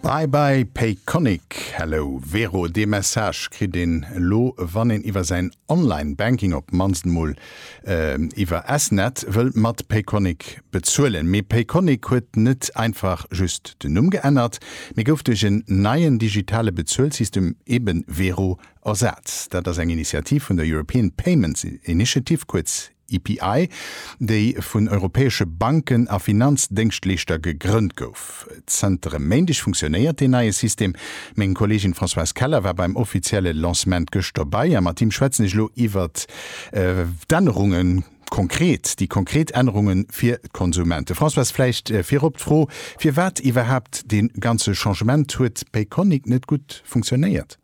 Bye bye Payconiq, Hello Vero, dee Message kritt een elo wann een iwwer säin Online Banking op d'mannst emol iwwer S-Net wëll mat Payconiq bezuelen. Mee Payconiq huet net einfach just den Numm geännert, mee gouf duerch en neien digitale Bezuelsystem, eben Vero, ersat. Dat ass eng Initiativ vun der European Payments Initiative, kuerz EPI, déi vun europäesche Banken a Finanzdéngschtleeschter gegrënnt gouf. Zënter e Méindeg funktionéiert deen neie System. Meng Kolleegin Françoise Keller war beim offizielle Lancement gëscht dobäi a mat him schwätzen ech elo iwwer d'Ännerungen, konkret déi konkret Ännerungen fir d'Konsumenten. Françoise, vläicht virop d'Fro, firwat iwwerhaapt dee ganze Changement? Huet Payconiq net gutt funktionéiert?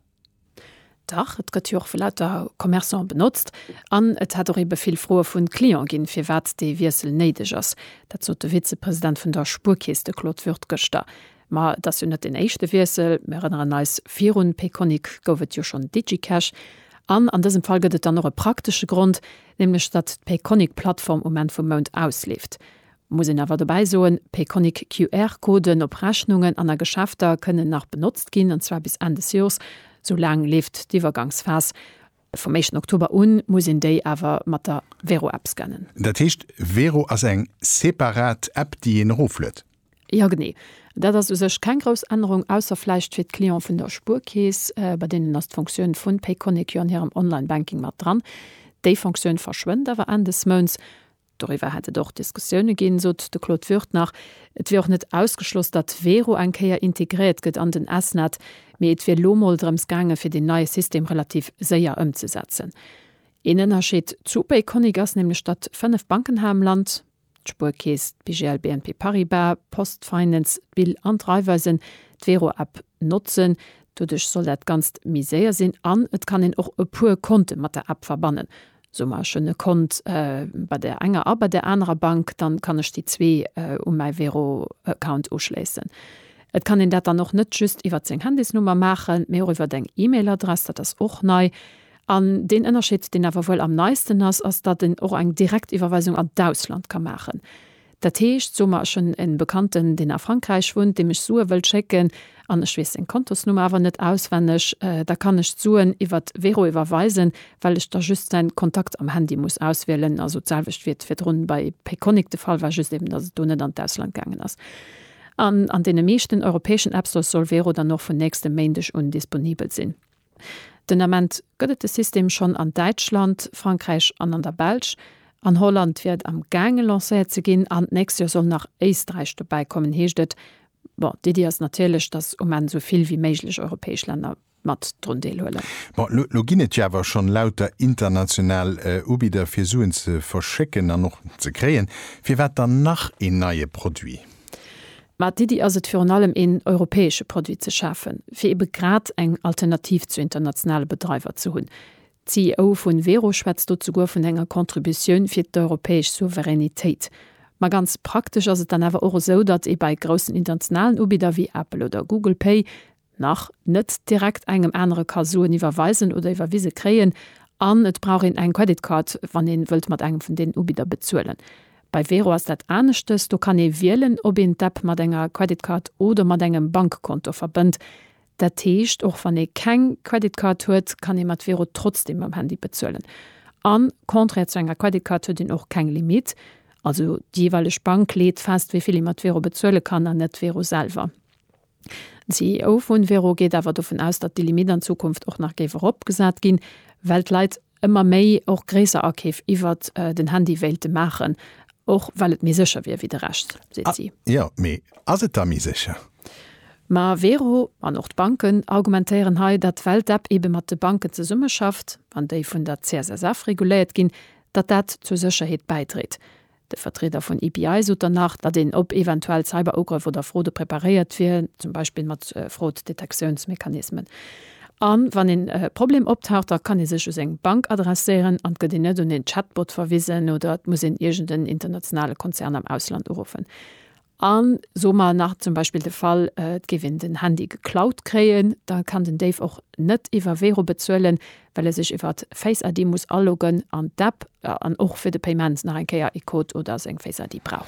Dach, et gëtt jo och vu lauter Commerçanten benotzt. An et hätt och eebe vill Froe vun Client ginn, firwat dee Wiessel néideg ass. Dat sot de Vizepresident vun der Spuerkeess, de Claude Würth gëschter. Ma et ass jo net deen éischte Wiessel. Mir erënneren eis, virun Payconiq gouf et jo schonn Digicash. An an dësem Fall gëtt et dann och e praktesche Grond, nämlech datt d'Payconiq-Plattform um Enn vum Mount ausleeft. Muss een awer dobäi soen, Payconiq QR-Coden op Rechnungen an a Geschäfter kënnen nach benotzt ginn, an zwar bis Enn des Jors, sou laang leeft d'Iwwergangsphas. Vum éischten Oktober un muss een déi awer mat der Vero-App scannen. Dat heescht, Vero ass eng separat App, déi een erofluet? Jo, genee. Dat ass u sech keng grouss Ännerung, ausser vläicht fir d'Cliente vun der Spuerkeess, bei deenen ass d'Funktioun vun Payconiq jo an hirem Online-Banking mat dran. Déi Funktioun verschwënnt awer Enn des Mounts. Doriwwer hätt et och Diskussioune ginn, sot de Claude Würth nach. Et wier och net ausgeschloss, datt d'Vero eng Kéier integréiert gëtt an den S-Net, mee et wier lo mol drëms gaange fir deen neie System relativ séier ëmzesetzen. Een Ënnerscheed zu Payconiq ass nämlech, datt 5 Banken hei am Land, d'Spuerkeess, d'BGL, BNP Paribas, d'Post Finance, d'BIL an d'Raiffeisen, d'Vero-App notzen. Doduerch soll dat Ganzt méi séier sinn an et kann een och e puer Konte mat der App verbannen, soe mer ech hunn e Kont bei der enger a bei der anerer Bank, dann kann ech déi zwee u mäi Wero-Account uschléissen. Et kann een dat dann och net just iwwert seng Handysnummer maachen, mee och iwwert eng E-Mail-Adress, dat ass och nei. An deen Ënnerscheed, deen awer wuel am neisten ass, ass, datt een och eng direkt Iwwerweisung an d'Ausland ka maachen. Dat heescht, so mer, ech hunn e Bekannten, deen a Frankräich wunnt, deem ech Sue wëll schécken, an ech weess seng Kontosnummer awer net auswenneg, da kann ech d'Suen iwwert Wero iwwerweisen, well ech da just säin Kontakt am Handy muss auswielen, also d'selwecht wéi et virdrun bei Payconiq de Fall war, just eben datt et do net an d'Ausland gaangen ass. An an deene meeschten europäeschen App Stores soll Wero dann och vun nächstem Méindeg un disponibel sinn. Den Ament gëtt et de System schonn an Däitschland, Frankräich an an der Belsch. An Holland wier et am gaange lancéiert ze ginn an d'nächst Joer soll nach Éisträich dobäi kommen, heescht et. Bon, d'Iddi ass natierlech, datt um Enn esou vill wéi méiglech europäesch Länner mat drun deelhuelen. Bon, elo elo ginn et jo awer schonn lauter international Ubidder fir Suen ze verschécken an och ze kréien. Firwat dann nach een neie Produit? Mä d'Iddi ass et virun allem een europäesche Produit ze schafen, fir ebe grad eng Alternativ zu internationale Bedreiwer ze hunn. D'CEO vu Wero schwätzt do souguer vun enger Contributioun fir d'europäesch Souveränitéit. Ma ganz praktesch ass et dann awer och esou, datt ee bei groussen internationalen Ubidder wéi Apple oder Google Pay nach, net direkt engem anere ka soen, iwwerweisen oder iwwerwise kréien, an et brauch een eng Credit Card, wann ee wëllt mat engem vun deenen Ubidder bezuelen. Bei Wero ass dat aneschtes, do kann ee wielen, ob een d'App mat enger Credit Card oder mat engem Bankkonto verbënnt. Dat heescht, och wann ee keng Credit Card huet, kann ee mat Wero trotzdeem mam Handy bezuelen. An, contraire zu enger Credit Card, huet een och keng Limit. Also déi jeeweileg Bank leet fest, wéi vill ee mat Wero bezuele kann, an net Wero selwer. D'CEO vun Vero geet awer dovun aus, datt déi Limitt an Zukunft och nach géif eropgesat ginn, well d'Leit ëmmer méi och gréisser Akeef iwwert den Handy wéilte maachen, och well et méi sécher wier wéi de Rescht, seet si. Jo, mee ass et da méi sécher? Ma Vero an och d'Banken argumentéieren hei, datt well d'App ebe mat de Banken zesummeschafft an déi vun der CSSF reguléiert ginn, datt dat zur Sécherheet bäidréit. De Vertrieder vun EPI sot dann nach, datt een op eventuell Cyberugrëff oder Fraude preparéiert wier, zum Beispill mat Fraud-Detektiounsmechanismen. A wann een Problem optaucht, da kann ee sech u seng Bank adresséieren an et gëtt een net un een Chatbot verwisen oder et muss een iergend en internationale Konzern am Ausland uruffen. An soe mer nach zum Beispill de Fall, et géif een den Handy geklaut kréien, da kann den Déif och net iwwer Wero bezuelen, well e sech iwwert Face ID muss aloggen an d'App an och fir de Payement nach eng Kéier ee Code oder seng Face ID brauch.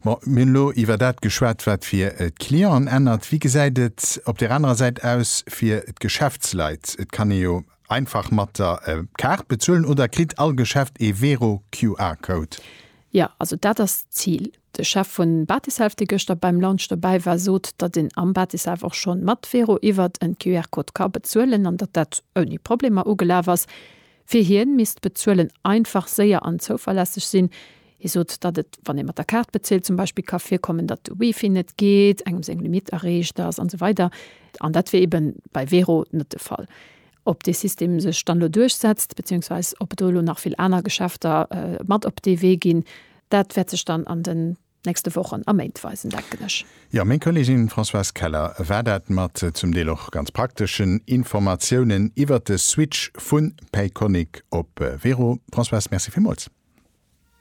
Bon, mir hunn elo iwwer dat geschwat, wat fir d'Clienten ännert. Wéi gesäit et op där anerer Säit aus fir d'Geschäftsleit? Et kann ee jo Einfach mat der Kaart bezuelen oder kritt all Geschäft ee Vero QR Code? Jo, also dat ass d'Zil. De Chef vun Batiself, dee gëschter beim Launch dobäi war, sot, datt een am Batiself och schonn mat Vero iwwert en QR Code ka bezuelen an datt dat ouni Problemer ugelaf ass. Fir hien misst d'Bezuelen einfach, séier an zouverlässeg sinn. Hie sot, datt et, wann ee mat der Kaart bezilt zum Beispill, ka virkommen, datt de Wifi net geet, engem seng Limitt erreecht ass an esou weider. An dat wier eben bei Wero net de Fall. Ob dee System sech dann elo duerchsetzt, beziéungsweis ob et do elo nach vill aner Geschäfter mat op dee Wee ginn, dat wäert sech dann an den nächste Wochen a Méint weisen, denken ech. Jo, meng Kollegin Françoise Keller war dat, mat zum Deel och ganz prakteschen Informatiounen iwwert de Switch vu Payconiq op Wero. Françoise, Merci villmools.